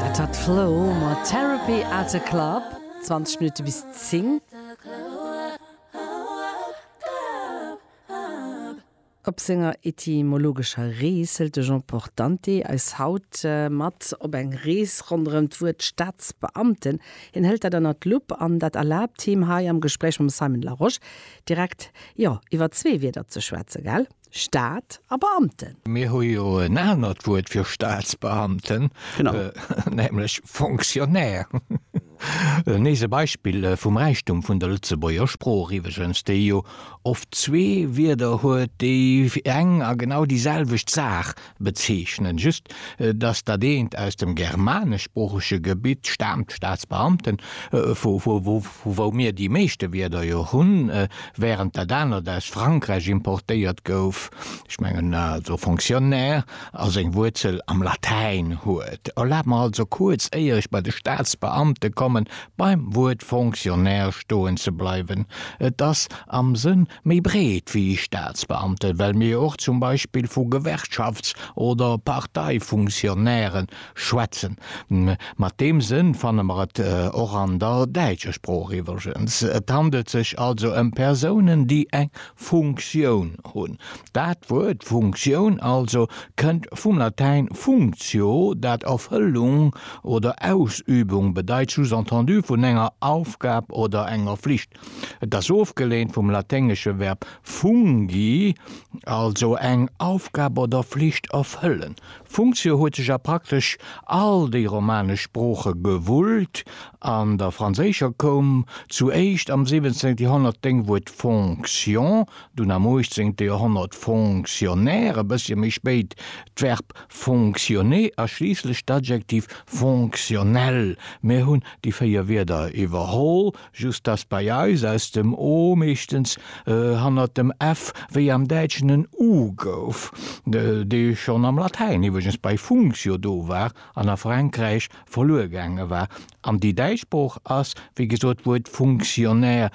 Dat war d'Flo mat Therapy at the Club, 20 Minutte bis 10. Op senger etymologescher Rees hëlt de Jean Portante eis haut mat op eng Rees ronderëm d'Wuert Staatsbeamten. Hien hëlt dat ënner d'Lupp an dat erlaabt him hei am Gespréich mam Simon Larosche direkt, jo, iwwer zwee Wierder ze schwätzen, gell? Staat a Beamten. Mir hu jo en anert Wuert fir Staatsbeamten, nämlech Fonctionnaire. Nees e Beispill vum Räichtum vun der Lëtzebuerger Sprooch iwweregens, déi jo oft zwee Wierder huet, déi fir eng a genau déi selwecht Saach Bezeechnen just, dass dat eent aus dem germaneschsproochege Gebitt staamt, Staatsbeamten, vu wou mir déi meeschte Wierder jo hunn, während dat anert aus Frankräich importéiert gouf, ech mengen also Fonctionnaire, a seng Wuerzel am Latäin huet. Erlaabt mer also kuerz, éier ech bei de Staatsbeamte kommen, beim Wuert Fonctionnaire stoen ze bleiwen. Et ass am Sënn Méi breet wéi Staatsbeamten, well mir och zum Beispill vu Gewerkschafts oder Parteifunktionnairen schwätzen. Mat deem Sënn fanne mer et och an der däitscher Sprooch iwwregens. Et handelt sech also ëm Persounen, déi eng Funktioun hunn. Dat Wuert Funktioun also kënnt vum Latäin functio, dat Erfëllung oder Ausübung bedeit, sous-entendu vun enger Aufgab oder enger Flicht. Et ass ofgeleent vum laténgesche Verb fungi, also eng Aufgab oder Flicht erfëllen. Funktio huet sech a praktesch all déi romanesch Sprooche gewullt. An der franséischer koum zu éischt am 17. Joerhonnert d'Déngwuert fonction, dunn am 18. Joerhonnert fonctionnaire, e bëssche méi spéit d'Verb fonctionner a schliisslech d'Adjektiv fonctionnel. Mir hunn déi véier Wierder iwwerholl. just dass bei eis aus dem o meeschtens e hannert dem f wéi am Däitschen en u gouf, dee schonn am Latäin iwweregens bei functio do war an a Frankräich verluer gaange war. An déi däitsch Sprooch ass, wéi gesot, d'Wuert Funktionär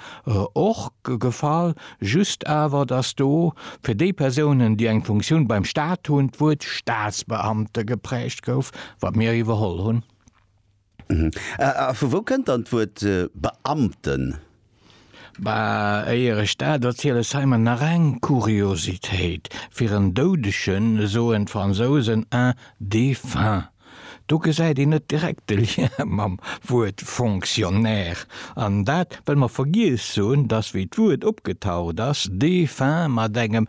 och gefall, just awer, dass do fir déi Persounen, déi eng Funktioun beim Stat hunn, d'Wuert Statsbeamte geprägt gouf, wat mir iwwerholl hunn. A vu wou kënnt dann d'Wuert Beamten? Bah, éier ech dat erziel, ech hei mer nach eng Kuriositéit. Fir en Doudegen soen d'Fransousen un défunt. Do gesäit een net direkt de Lien mam Wuert Fonctionnaire. An dat, well mer vergiess hunn, dass wéi d'Wuert opgetaucht ass, défunt mat engem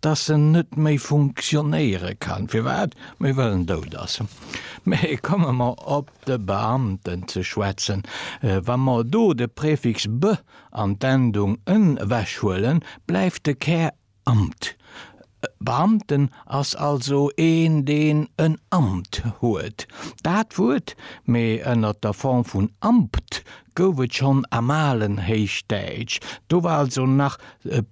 dass en net méi funktionéiere kann, firwat mir wëllen dout ass. Mee komme mer op de Beamten ze schwätzen. Wa mer do de Prefix be an d'Endung en ewechhuelen, bleift de Kär Amt. Beamten ass also een, deen en Amt huet. Dat Wuert, mee ënner der Form vun Ampt, gouf et schonn am alen Héichdäitsch. Do war also nach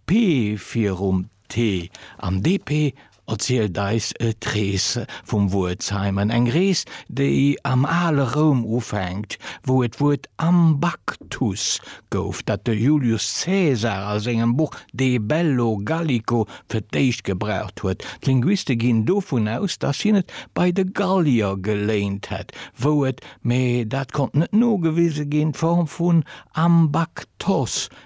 P virum t an DP erzielt eis d'Rees vum Wuert Simon, eng Rees, déi am ale Roum ufänkt, wou et d'Wuert Ambactus gouf, dat de Julius Caesar a sengem Buch De bello Gallico fir d'éischt gebraucht huet. D'Linguiste ginn dovun aus, datt hien et bei de Gallier geléint hätt, wou et, mee dat konnt net nogewise ginn, d'Form vun Ambactos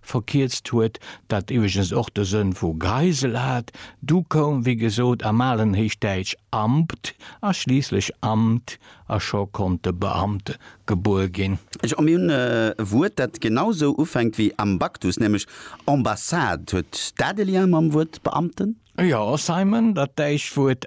verkierzt huet, dat iwweregens och de Sënn vu Geisel hat, du koum wéi gesot am alen Héichdäitsch Ambt a schliisslech Amt a scho konnt de Beamte gebuer ginn. A mir hunn e Wuert, dat genau sou ufänkt wéi Ambactus, nämlech Ambassade. Huet dat e Lien mam Wuert Beamten? Jo, Simon, dat däitscht Wuert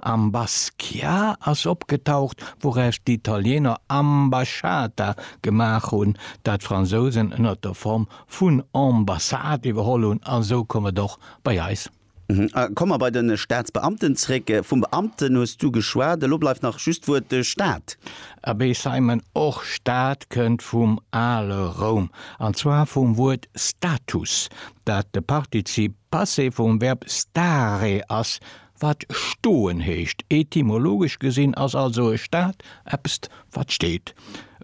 Am Basquiat ass opgetaucht, wouraus d'Italieener Ambasciata gemaach hunn, dat d'Fransousen ënnert der Form vun Ambassade iwwerholl hunn, a sou koum et och bei eis. Komme mer bei de Staatsbeamten zréck. Vum Beamten hues du geschwat, elo bleift nach just d'Wuert de Staat. Abee Simon, och Staat kënnt vum ale Roum, an zwar vum Wuert status, dat de Partizip Passé vum Verb stare ass, Wat stoen heescht. Etymologesch gesinn ass also e Stat eppst wat steet,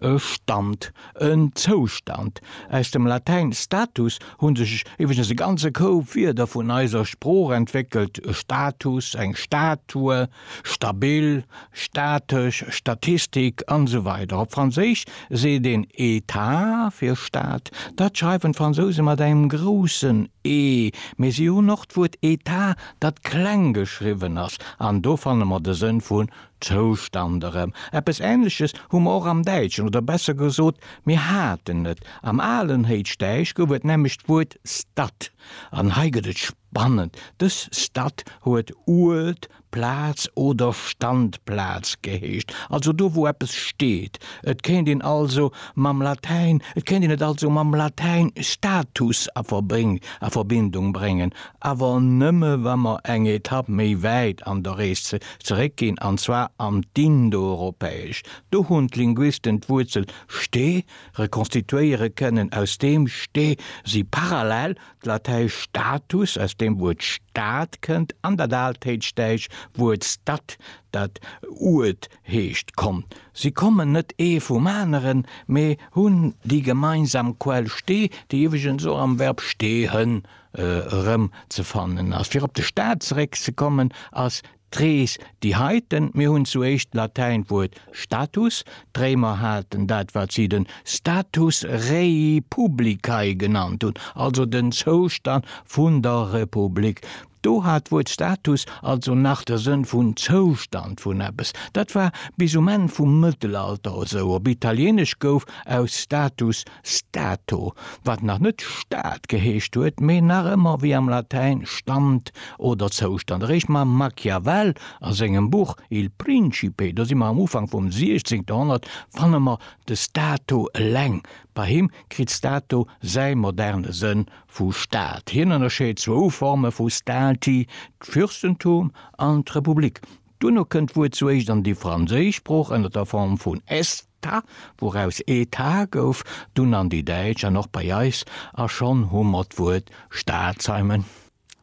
e Stand, en Zoustand. Aus dem Latäin status hu sech iwweregens e ganze Koup Wierder vun eiser Sprooch entwéckelt, Status, eng Statue, stabil, statesch, Statistik, an esou weider Op Franséisch seet een État fir Stat. Dat schreiwen d'Fransouse mat engem groussen E, mee si hunn och d'Wuert Etat dat kleng geschriwwen ass, an do fanne mer de Sënn vun Zoustand erëm. Eppes Änleches hu mer och am Däitschen, oder besser gesot, mir haten et. Am alen Héichdäisch gouf et nämlech d'Wuert Stad, an hei gëtt et spannend, dës Stad huet Uert, Plaz oder Standplaz geheescht, also do, wou eppes steet. Et kéint een also mam Latäin, et kéint een et also mam Latäin status a Verbindung bréngen, awer nëmme wa mer eng Etapp méi wäit an der Rees zeréck ginn, an zwar an d'Indoeuropäesch. Do hunn d'Linguisten d'Wuerzel ste rekonstituéiere kënnen, aus deem ste si parallel d'Latäisch status, aus deem Wuert Stad kënnt, an dat Altéitschdäitsch Wuert stad, dat Uert heescht, konnt. Si kommen net ee vum aneren, mee hunn déi gemeinsam Quell ste, déi iwweregens och am Verb stehen erëm ze fannen ass. Fir op de Staat zeréck ze kommen, ass d'Rees déi heite. Mir hunn zu éischt d'Latäint Wuert status, d'Réimer haten dat wat si den status rei publicae genannt hunn, also den Zoustand vun der Republik. Do hat d'Wuert status also nach de Sënn vun Zoustand vun eppes. Dat war bis um Enn vum Mëttelalter esou. Op Italieenesch gouf aus status Stato, wat nach net Stad geheescht huet, mee nach ëmmer wéi am Latäin Stand oder Zoustand. Eréischt mam Machiavel a sengem Buch Il Principe, do si mer am Ufank vum 16. Joerhonnert, fanne mer de Stato eleng. Bei him kritt Stato säi moderne Sënn vu Stad. Hien ënnerscheet zwou Forme vu Stati, d'Fürstentum an d'Republik. Duerno kënnt d'Wuert souéischt an déi franséisch Sprooch ënner der Form vun est. Ta, wouraus ee Ta gouf, dunn an déi Däitsch an och bei eis, a schonn hu mer d'Wuert Staatsheimen.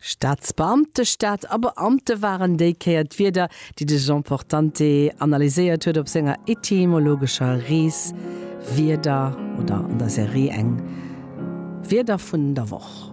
Staatsbeamte, Staat a Beamte waren déi Kéier d'Wierder, déi de Jean Portante analyséiert huet op senger etymologescher Rees Wierder oder an der Serie Eng Wierder vun der Woch.